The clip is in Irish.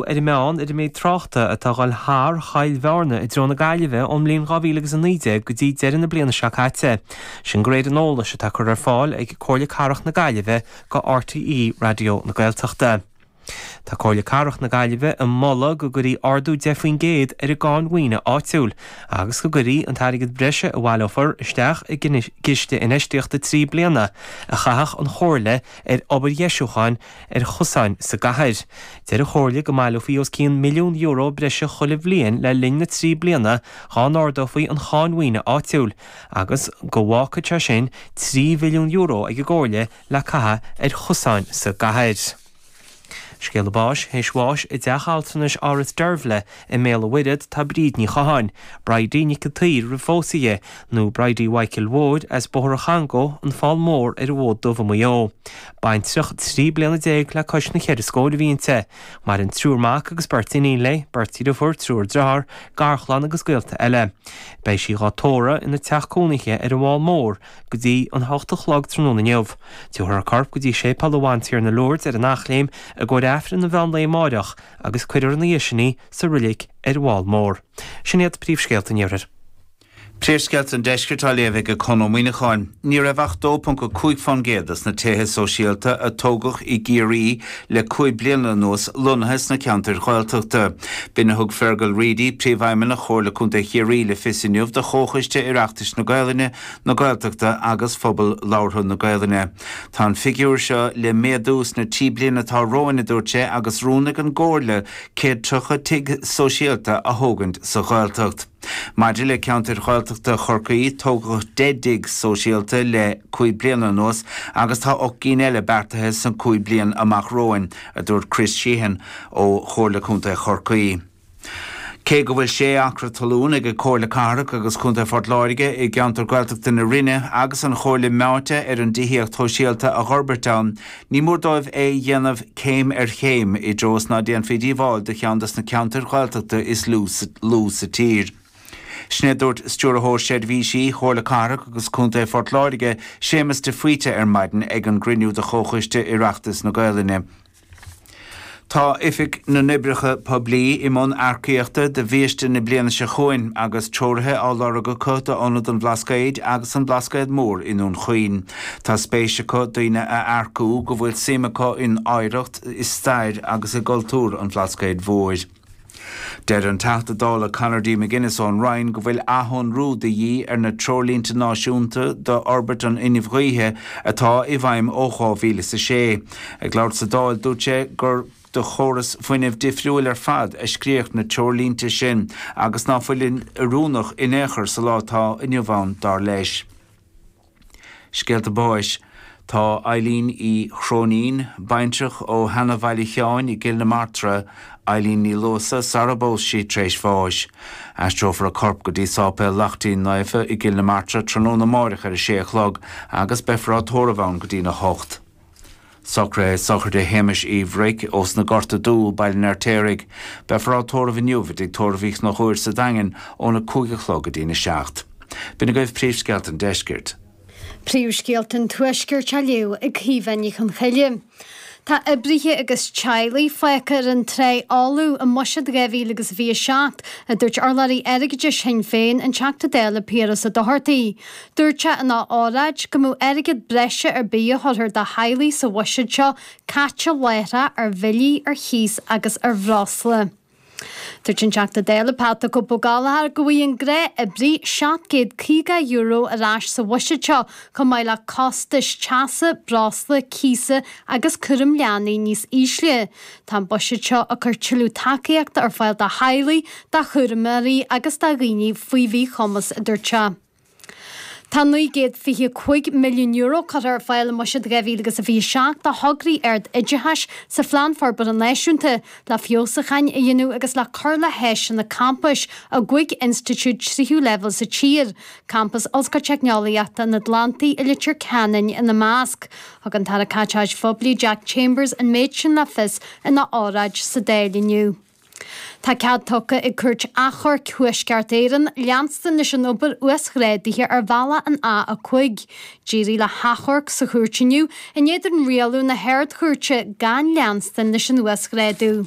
ar an meán, ar an méid tráchta atá a dhul thar Choill Bhearna i dtreo na Gaillimhe ón mbliain 2000 agus 19 go dtí deireadh na bliana seo caite, sin de réir an eolais atá curtha ar fáil ag Comhairle Cathrach na Gaillimhe go RTÉ Raidió na Gaeltachta. Tá Comhairle Cathrach na Gaillimhe ag moladh go gcuirfí ardú 10 faoin gcéad ar an gcáin mhaoine áitiúil agus go gcuirfí an t-airgead breise a bhaileofaí isteach i gciste infheistíochta trí bliana a chaithfeadh an Chomhairle ar obair dheisiúcháin ar chosáin sa gcathair. Deir an Chomhairle go mbaileofaí os cionn milliún euro breise chuile bhliain le linn na trí bliana dhá n-ardófaí an cháin mhaoine áitiúil agus go bhfágfadh sé sin €3 mhilliún ag an gComhairle le caitheamh ar chosáin sa gcathair. Scéala báis Thar éis bháis i dteach altranais Áras Deirbhle I mBéal a' Mhuirthead tá Bríd Ní Chatháin, 'Bridie Nic a' tSaoir' roimh phósadh di, nó Bridie Mhaidhcil Mhóir as Bóthar an Chongó, an Fál Mór ar an bhFód Dubh i Maigh Eo. Baintreach, trí bliana déag le cois na ceithre scóir a bhí inti. Maireann triúr mac agus beirt iníon léi, beirt dhriofúr, triúr driothár, garchlann agus gaolta eile. Beidh sí dhá tórradh ina teach cónaithe ar an bhFál Mór go dtí a hocht a chlog tráthnóna inniu. Tiúrfar a corp go dtí Séipéal an Bhantiarna Lourdes ar an Eachléim i gcomhair Aifreann an mheán lae amáireach, agus cuirfear ina dhiaidh sin í sa roilic ar an bhFál Mór. Sin iad príomhscéalta an Iarthair. Príomhscéalta an Deiscirt á léamh ag Conn Ó Muíneacháin. Ní raibh ach 2.5 fán gcéad des na tithe sóisialta a tógadh i gCiarraí le cúig bliana anuas lonnaithe sna ceantair Ghaeltachta. B'in a thug Fergal Reidy, Príomhfheidhmeannach Chomhairle Contae Chiarraí le fios inniu do Chomhchoiste Oireachtais na Gaelainne, na Gaeltachta agus phobal labhartha na Gaelainne. Tá an figiúr seo le méadú sna trí bliana atá romhainn, a dúirt sé, agus rún ag an gComhairle céad tríocha tigh sóisialta a thógaint sa Ghaeltacht. Maidir le ceantair Ghaeltachta Chorcaí, tógadh deich dtigh sóisialta le cúig bliana anuas agus tá ocht gceann eile beartaithe sna cúig bliain amach romhainn, a dúirt Chris Sheehan ó Chomhairle Contae Chorcaí. Cé go bhfuil sé acra talún ag Comhairle Cathrach agus Contae Phort Láirge i gceantar Gaeltachta na Rinne agus an Chomhairle meáite ar an dtithíocht shóisialta a dh'fhorbairt ann, ní mór dóibh é a dhéanamh céim ar chéim i dtreo is ná déanfaí díobháil do cheann des na ceantair Ghaeltachta is lú sa tír. Sin é a dúirt Stiúrthóir Seirbhísí Chomhairle Cathrach agus Contae Phort Láirge, Séamus de Faoite ar maidin ag an gcruinniú de Chomhchoiste Oireachtais na Gaolainne. Tá Oifig na nOibreacha Poiblí i mbun earcaíochta do bhiaiste na bliana seo chugainn agus treoraithe á lorg acu d'Ionad an Bhlascaoid agus An Blascaod Mór i nDún Chaoin. Tá spéis acu daoine a earcú go bhfuil suim acu in oidhreacht, i stair agus i gcultúr an Bhlascaoid Mhóir. Deir an Teachta Dála Conor D. McGuinness ón Rinn go bhfuil athshonrú de dhíth ar na Treoirlínte Náisiúnta d'Fhorbairt an Fhuinnimh Ghaoithe atá i bhfeidhm ó dhá mhíle is a sé. Ag labhairt sa Dáil dúirt sé gur do chóras fuinnimh difriúil ar fad a scríodh na treoirlínte sin agus ná fuilid oiriúnach in aon chor sa lá atá inniu ann, dar leis. Scéalta Báis Tá Eileen Uí Chróinín, baintreach ó Sheanbhaile Sheáin i gCill na Martra, Eileen Ní Luasa, sara bpós sí, tar éis bháis. Aistreofar a corp go dtí Sáipéal Lachtín Naofa i gCill na Martra tráthnóna amáireach ar a sé a chlog agus beifear á tórramh ann go dtína hocht. Socruithe sochraide Shéamais Uí Bhruic, ós na Gorta Dubha, Baile an Fheirtéaraigh. Beifear á tórramh inniu i dtigh tórraimh Uí Chonchúir sa Daingean óna cúig a chlog go dtína a seacht. B'in agaibh príomhscéalta an Deiscirt. Príomhscéalta an Tuaiscirt á léamh ag Caoimhe Ní Chonchoille. Tá oibrithe agus teaghlaigh fágtha ar an trá fholamh i mbuiséad 2027, a dúirt urlabhraí airgeadais Shinn Féin, an Teachta Dála Piaras Ó Dochartaigh. Dúirt sé ina óráid go mbeadh airgead breise ar bith a thabharfar do theaghlaigh sa bhuiséad seo caite láithreach ar bhillí, ar chíos agus ar bhreosla. Dúirt an Teachta Dála Pat 'The Cope' Ó Gallchóir go bhfaighidh an gnáthoibrí €750 ar ais sa bhuiséad seo chomh maith le costais teasa, breosla, cíosa agus cúraim leanaí níos ísle. Tá an buiséad seo ag cur tuilleadh tacaíochta ar fáil do theaghlaigh, do chúramóirí agus do dhaoine faoi mhíchumas, a dúirt sé. Tá €925 milliún curtha ar fáil i mbuiséad 2027 do thograí ard-oideachais sa Phlean Forbartha Náisiúnta le feabhsúcháin a dhéanamh agus le cur le háiseanna campais i gcúig institiúid tríú leibhéal sa tír, Campas Ollscoil Teicneolaíochta an Atlantaigh i Leitir Ceanainn ina measc. Thug an tAire Caiteachais Phoiblí Jack Chambers an méid sin le fios ina óráid sa Dáil inniu. Tá cead tugtha ag Cúirt Achomhairc Thuaisceart Éireann leanstan leis an obair uasghrádaithe ar bhealach an A5. D'éirigh le hachomharc sa chúirt inniu in éadan rialú na hArd-Chúirte gan leanstan leis an uasghrádú.